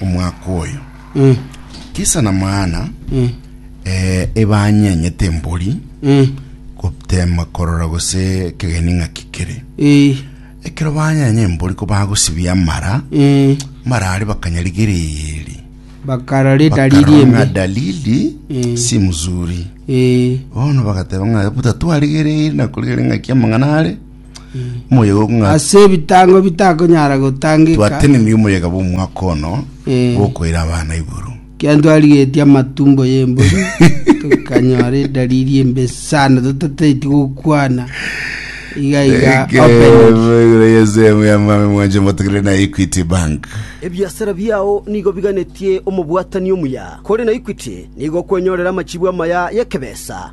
omwaka oyo Mm. kisa namana Mm. eh, ebanyenyete embori Mm. gotema korora gose ekegeni ng'aki kere Eh. ekero banyenya embori ko bagosibia amara Mm. mara are bakanyarigereri bakara ridari Bakarora ng'a riembe dalili Mm. si mzuri Eh. bono bagateba ng'a butatwarigereri nakorigere ng'aki amang'ana are Omoyega okong'a- ase ebitango bitakonyara gotangeka twatenemi omoyega bw'omwaka ono Eh. bw'okoira abana igoro kiantwarigetie amatumbo y'embori tukanyora edalili embe sana totateti gokwana iga iga open yesemu yamame mwanje motogere na equity bank Ebiasara biao nigo biganetie omobwatani omuya, kore na Equity nigo okwenyorera amachibu amaya y'ekebesa.